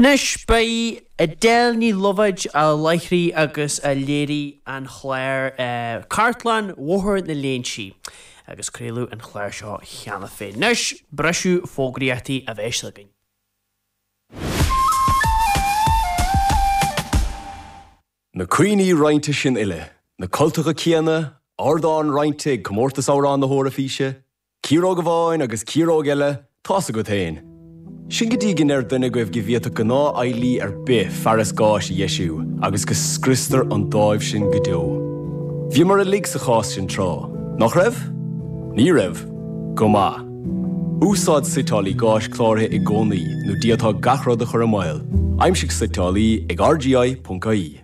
Anois b'í Edel Ní Loibhéid a láithrigh agus a léirigh an chlár Cartlann Bhóthar na Léinsí agus craoladh an chlár seo cheana féin. Anois briseadh fógraíochtaí a bheidh againn. Na cuimhní roinnte sin uile, na cultacha céanna, ardán roinnte ag Comórtas Amhrán na hEoraifíse, Ciaróg amháin agus ciaróg eile tá's agat fhéin. Sin go dtí go ndeir duine agaibh go bhféadfadh gnáth fheighlí ar bith fearas gáis a dheisiú agus go scriostar an dáimh sin go deo. Bhíomar uilig sa chás sin tráth. Nach raibh? Ní raibh? Go maith. Úsáid suiteálaí gáis cláraithe i gcónaí nó d'fhéadfá gach rud a chur i mbaol. Aimsigh suiteálaí ag rgi.ie.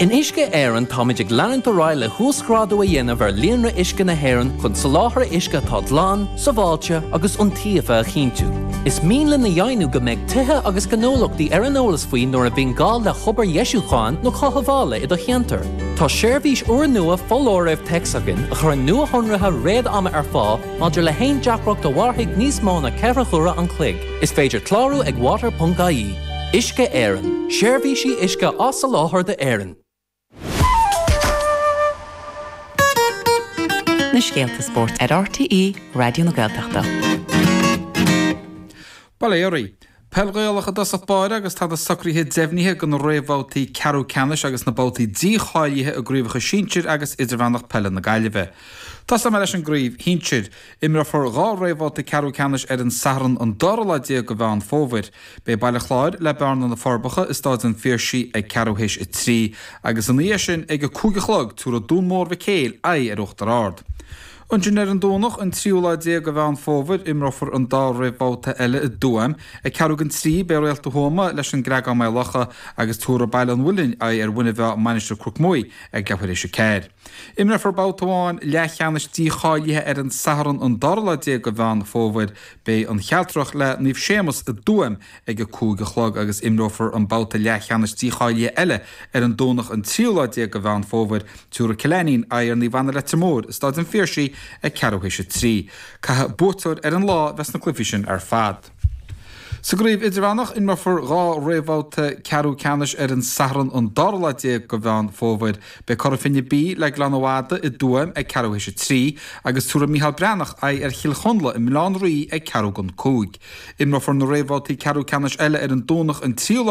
In Uisce Éireann táimid ag leanúint ar aghaidh le huasghrádú a dhéanamh ar líonra uisce na hÉireann chun soláthar uisce atá glan, sábháilte agus iontaofa a chinntiú. Is mian linn a dheimhniú go mbeidh tithe agus gnólachtaí ar an eolas faoi nuair a bhíonn gá le hobair dheisiúcháin nó chothabhála i do cheantar. Tá seirbhís úrnua foláirimh téacs againn a chuireann nuashonruithe réad-ama ar fáil maidir le haon deacracht a mhairfidh níos mó ná ceithre huaire an chloig. Is féidir clárú ag water.ie. Uisce Éireann, Seirbhísí uisce á soláthar d'Éirinn. na scéalta spóirt ar RTÉ Raidió na Gaeltachta. Bail ó Dhia oraibh. Peil Ghaelach i dtosach báire agus tá na socruithe deimhnithe do na réamhbhabhtaí ceathrú ceannais agus na babhtaí dícháilithe i gCraobhacha Sinsir agus Idirmheánach Peile na Gaillimhe. Tosóidh mé leis an gCraobh Shinsir. Imreofar dhá réamhbhabhta ceathrú ceannais ar an Satharn an dara lá déag de Mheán Fómhair. Beidh Baile Chláir le Bearna, Na Forbacha i Stáid an Phiarsaigh ag ceathrú théis a trí agus ina dhiaidh sin ag a cúig a chlog tabharfaidh Dún Mór Mhic Éil aghaidh ar Uachtar Ard. Ansin ar an Domhnach an tríú lá déag de Mheán Fómhair imreofar an dá réamhbhabhta eile i dTuaim. Ag ceathrú don trí beidh Réalta Thuama leis an gCreagán-Maigh Locha agus tabharfaidh Baile an Mhuilinn aghaidh ar Mhuine Mheá-Mainistir Cnoc Muaidh ag leathuair théis a ceathair. Imreofar babhta amháin leathcheannais dícháilithe ar an Satharn an dara lá déag de Mheán Fómhair. Beidh An Chealtrach le Naomh Séamus i dTuaim ag a cúig a chlog agus imreofar an babhta leathcheannais dícháilithe eile ar an Domhnach an tríú lá déag de Mheán Fómhair. Tabharfaidh Cill Ainnín aghaidh ar Naomh Anna Leitir Móir i Stáid an Phiarsaigh ag ceathrú théis a trí. Caithfidh buaiteoir ar an lá bheith sna cluichí sin ar fad. Sa gcraobh idirmheánach, imreofar dhá réamhbhabhta ceathrú ceannais ar an Satharn an dara lá déag de Mheán Fómhair. Beidh Cora Finne B le Gleann na Madadh i dTuaim ag ceathrú théis a trí agus tabharfaidh Micheál Breathnach aghaidh ar Chill Chonla i mBaile Átha an Rí ag ceathrú don cúig. Imreofar na réamhbhabhtaí ceathrú ceannais eile ar an Domhnach an tríú lá